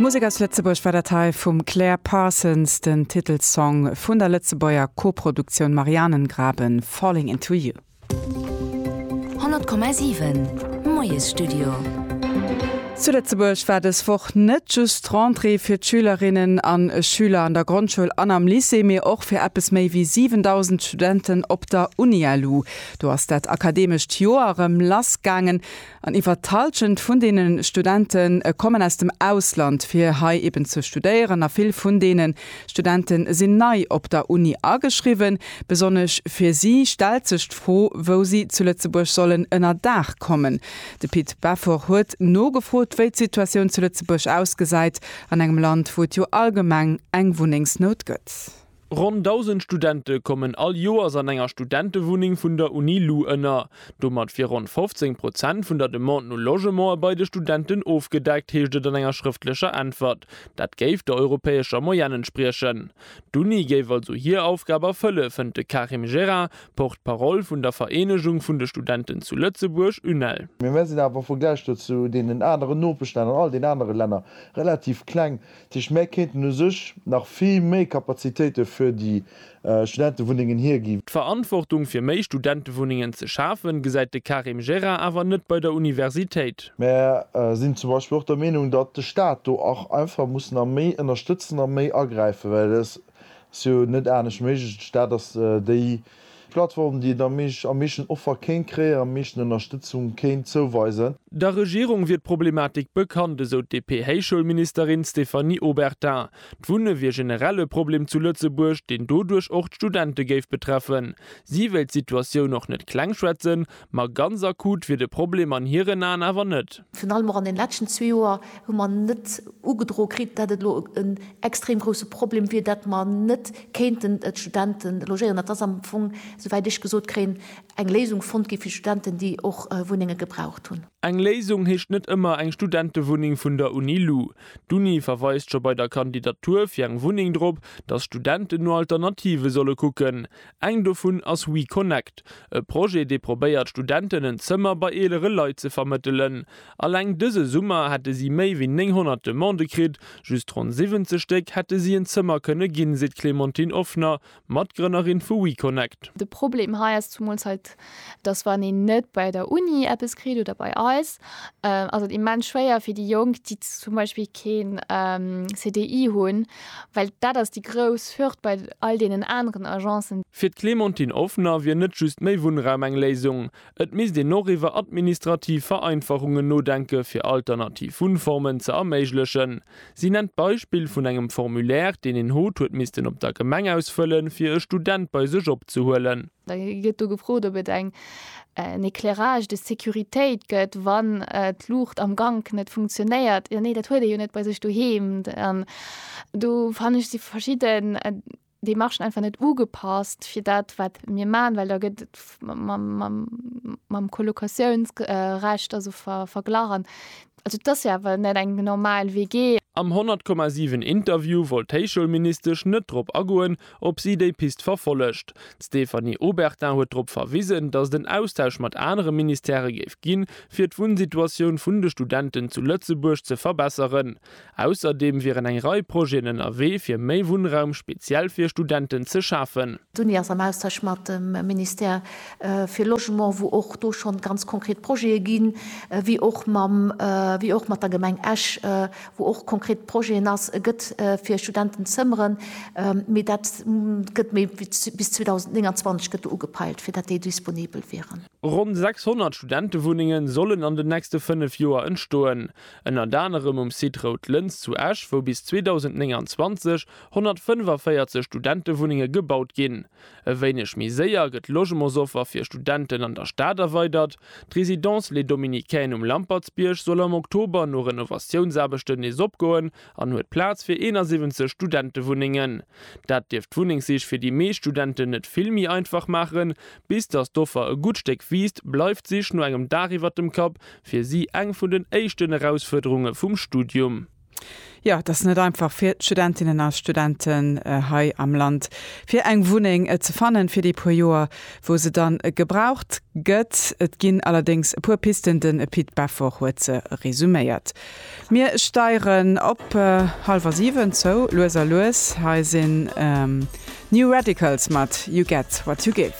Musek aus Lëtzebuerg war dat hei vum Claire Parsons, den Titelsong vun der Lëtzebuerger Koproduktioun Marianengraben, Falling into you. 100,7 Moiesstudio. Zu Lëtzebuerg war dës Woch net just d'Rentrée fir d'Schülerinnen a Schüler an der Grondschoul an am Lycée, mee och fir eppes méi wéi 7.000 Studenten op der Unilu. Do ass dat akademescht Joer erëm lass gaangen. An iwwer d'Halschent vun deene Studente kommen aus dem Ausland, fir hei eben ze studéieren. A vill vun deene Studente sinn nei op der Uni ageschriwwen. Besonnesch fir si stellt sech d'Fro, wou si zu Lëtzebuerg sollen ënner Daach kommen. De Pit Beffort huet nogefrot, wéi d'Situatioun zu Lëtzebuerg ausgesäit, an engem Land, wou et jo allgemeng eng Wunnengsnout gëtt. Ronn 1.000 Studente kommen all Joers an enger Studentewunneng vun der Uni lu ënner. Domat wier ronn 15 Prozent vun der Demande no Logementer bei de Studenten ofgedeckt, heescht et an enger schrëftlecher Äntwert. Dat géif der europäescher Moyenne entspriechen. D'Uni géif also hir Aufgab erfëlle, fënnt de Karim Gerra, Porte-parole vun der Vereenegung vun de Studenten zu Lëtzebuerg, UNEL. Mee mär sinn awer am Vergläich dozou deenen aneren Nopeschlänner an all den anere Länner relativ kleng. Dat heescht, mär kéinten u sech nach vill méi Kapazitéite fir déi Studentewunnengen hiergi. D'Verantwortung fir méi Studentewunnengen ze schafen, gesäit de Karim Gerard awer net bei der Universitéit. Mär sinn zum Beispill och der Meenung, datt de Staat do och einfach muss nach méi ënnerstëtzen a méi agräifen, well et Ass jo net anescht méiglech. D'Stad ass déi. Plattform, déi et am meeschten Offer kéint kréien, am meeschten Ënnerstëtzung kéint zouweisen. Der Regierung wier d'Problematik bekannt, esou d'DP-Héichschoulministerin Stéphanie Obertin. D'Wunne wier generell e Problem zu Lëtzebuerg, deen doduerch och d'Studente géif betreffen. Si wéilt d'Situatioun och net klengschwätzen, Ma ganz akut wier de Problem an hiren Aen awer net. Virun allem och an den leschten zwee Joer hu mer net ugedroe kritt, dat et elo en extrem grousse Problem wier, dat mer net kéinten d'Studente logéieren. Et ass am Fong, souwäit ech gesot kréien, eng Léisung fonnt gi fir d'Studenten, déi och Wunnenge gebraucht hunn. Eng Léisung heescht net ëmmer eng Studentewunneng vun der Uni lu. D'Uni verweist scho bei der Kandidatur fir eng Wunneng drop, datt Studenten no Alternative solle kucken. Eng dovun ass WeConnect, e Projet, dee probéiert, Studenten en Zëmmer bei eelere Leit ze vermëttelen. Alleng dëse Summer hätte si méi wéi 900 Demandë kritt, just ronn 70 Stéck hätte si en Zëmmer kënne ginn, seet d'Clémentine Offner, Matgrënnerin vu WeConnect. De Problem hei ass zumools hei dass wann een net bei der Uni eppes kritt oder bei eis, ass et immens schwéier fir déi Jonk, déi zum Beispill keen CDI hunn, well dat ass déi grouss Hürd bei all deenen aneren Agencen. Fir d'Clémentine Offner wier net just méi Wunnraum eng Léisung. Et misst een och iwwer administrativ Vereinfachungen nodenke fir alternativ Wunnformen ze erméiglechen. Si nennt d'Beispill vun engem Formulaire, deen een hot huet missten op der Gemeng ausfëllen, fir e Student bei sech opzehuelen. Da gëtt do gefrot, ob et en éclairage de sécuritéit gëtt, wann d'Luucht am Gank net funktionéiert. Jo, nee, dat huet ee jo net bei sech doheem. Do fannen ech, si verschidden. dee Marché einfach net ugepasst fir dat, wat mir maachen, well da gëtt et mam Kolokatiounsrecht also verglach an also et ass jo awer net eng normal WG. Am 100, 7 Interview wollt d'Héichschoulministesch net drop agoen, ob si déi Pist verfollegt. D'Stéphanie Obertin huet drop verwisen, datt et en Austausch mat anere Ministèrë géif ginn, fir d'Wunnsituatioun vun de Studenten zu Lëtzebuerg ze verbesseren. Ausserdeem wieren eng Rei Projeten ënnerwee fir méi Wunnraum speziell fir Studenten ze schafen. D'Uni ass am Austausch mat dem Ministère fir Logement, wou och do schonn ganz konkret Projete ginn, wéi och mam, wéi och mat der Gemeng Esch, wou och konkret Projeten ass, e gëtt fir Studenten Zëmmeren, mee dat gëtt méi wéi bis 2029 gëtt do ugepeilt, fir dat déi disponibel wieren. Ronn 600 Studentewunnenge sollen an den nächste fënnef Joer entstoen. Ënnert anerem um Site Rout Lëns zu Esch, wou bis 2029 145 Studentewunnenge gebaut ginn. E wéineg méi séier gëtt d'Logementsoffer fir Studenten an der Stad erweidert. D'Résidence Les Dominicaines um Lampertsbierg soll am Oktober no Renovatiounsaarbechten nees opgoen an huet Plaz fir 71 Studentewunnengen. Dat dierft d'Wunnengsich fir déi meescht Studenten net vill méi einfach maachen, Bis datt d'Offer e gutt Stéck wiisst, bleift d'Sich no engem Daach iwwert dem Kapp fir si eng vun den éischten Erausfuerderunge vum Studium. Jo, et ass net einfach fir d'Studentinnen a Studenten hei am Land, fir eng Wunneng ze fannen fir déi puer Joer, wou se dann gebraucht gëtt. Et ginn allerdéngs e puer Pisten, den Pit Beffort huet se resuméiert. Mir steieren op halwer 7 zou, lues a lues. Hei sinn New Radicals mat You Get What You Give.